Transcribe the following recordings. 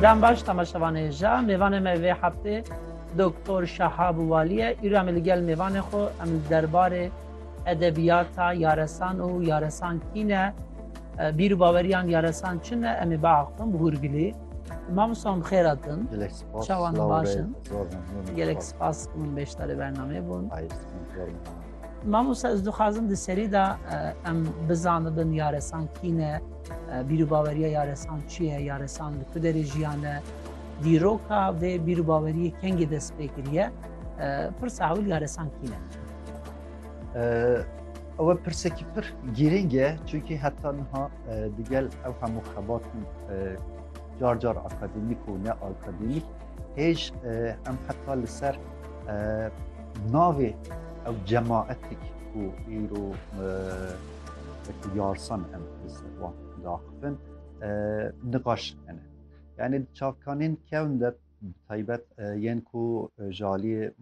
Dem baş temaşevanê hêja. Mêvanê me vê heftê Doktor Şahab Walî ye. Îro em ê li gel mêvanê xwe em li derbarê edebiyata yaresan û yaresan kî ne, bîr û baweriyan yaresan çi ne em ê biaxivin bi hûrgilî. Mamosta min bi xêr hatin. Gelek spas. Çawan silav baş be, in. zor memnûn. Gelek spas ki min beşdarê bernameyê bûn. Hayır, sıkıntı yok. Mamosta ez dixwazim di serî de em bizanibin yaresan kî ne, Bîrûbaweriya yaresan çi ye? Yaresan li ku derê jiyane? Dîroka vê bîrûbaweriyê kengê dest pê kiriye? Pirsa ewil yaresan kî ne? Ew pirsekî pir girîng e çunkî heta niha digel ew hemû xebatên car car akademîk û ne akademîk hêj em heta li ser navê ew cemaetik û îro wekî yarsan em li ser wan diaxivin niqaş hene. Yani di çavkanên kevn de taybet yên ku ji aliyê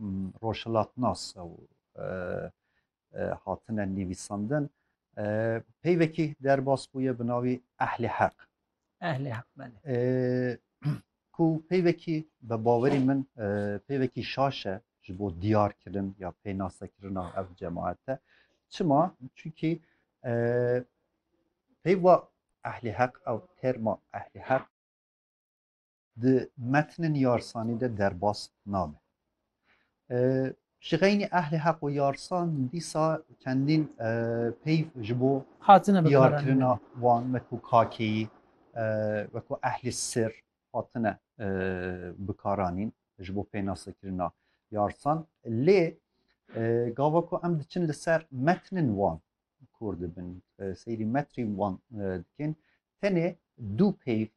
roşhilatnas ew hatine nivîsandin peyvekî derbas bûye bi navî ehlê heq Ehlê hak belê. Ku peyvekî bi bawerî min peyvekî şaş e ji bo diyarkirin ya pênasekirina ev cemaete. Çima? Çunkî peyva ehlê heq ew terma ehlê heq di metnên yarsanî de derbas nabe. Ji xeynî ehlê heq û yarsan dîsa çendîn peyv ji bo diyarkirina wan wekû kakeyî wekû ehlê sir hatine bikaranîn ji bo pênasekirina yarsan lê gava ku em diçin li ser metnên wan kor dibin seyrî metrî wan dikin tenê dû peyv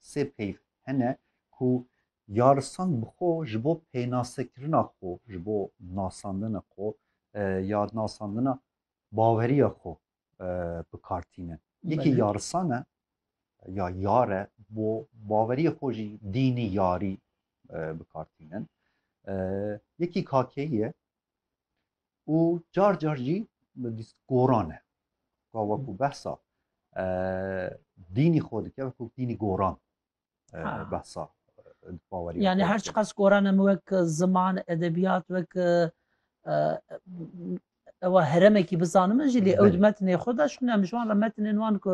Sê peyv hene ku yarisan bi xwe ji bo pênasekirina xwe, ji bo nasandina xwe ya nasandina baweriya xwe bi kar tînin. Yekî yarisan e ya yar e bo baweriya xwe jî dînî yarî bi kar tînin. Yekî kakeyî ye û car car jî goran e ka wekû behsa dînî xwe dike wekû dînî goran behsa bawerî yani her çiqas goran em wek ziman edebiyat wek ewa heremekî bizanim jî lê ew di metnê xwe de şûne em ji wan re metnên wan ku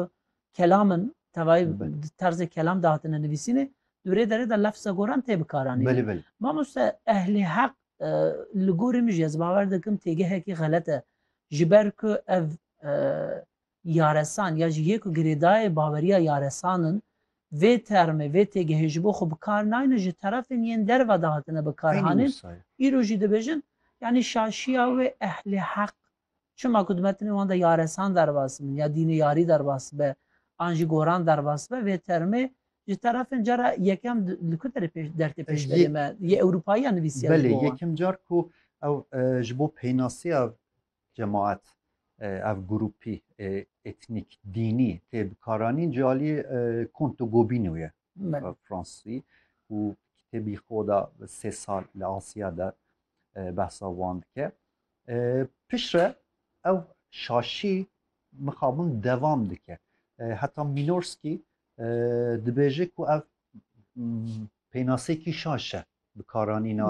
kelam in tevayî di terzê kelam de hatine nivîsînê di rê derê de lefza goran tê bikaranîne. Mamoste ehlê heq e, li gorî min jî ez bawer dikim têgehekî xelet e ji ber ku ev e, yaresan ya jî yê ku girêdayê baweriya yaresan in vê termê vê têgehê ji bo xwe bi kar nayne ji terefên yên derve de hatine bikaranîn. Îro jî dibêjin yanî şaşiya wê ehlê heq Çima ku dime tenê wan de yaresan derbas bin ya dînê yarî derbas be an jî goran derbas be vê termê ji terefên cara yekem li ku derê pêş der tê pêşberê me yê ewropayiyan nivîsiye ji bo wan. Belê yekem car ku ew ji bo peynasiya cemaet ev grûpî etnîk dînî tê bikaranîn ji aliyê Conte Gobineau ye fransî û kitêbî xwe da sê sal li Asiya de behsa wan dike. Piştre ew şaşî mixabin devam dike. Heta Mînorskî dibêje ku ev pênasekî şaş e bikaranîna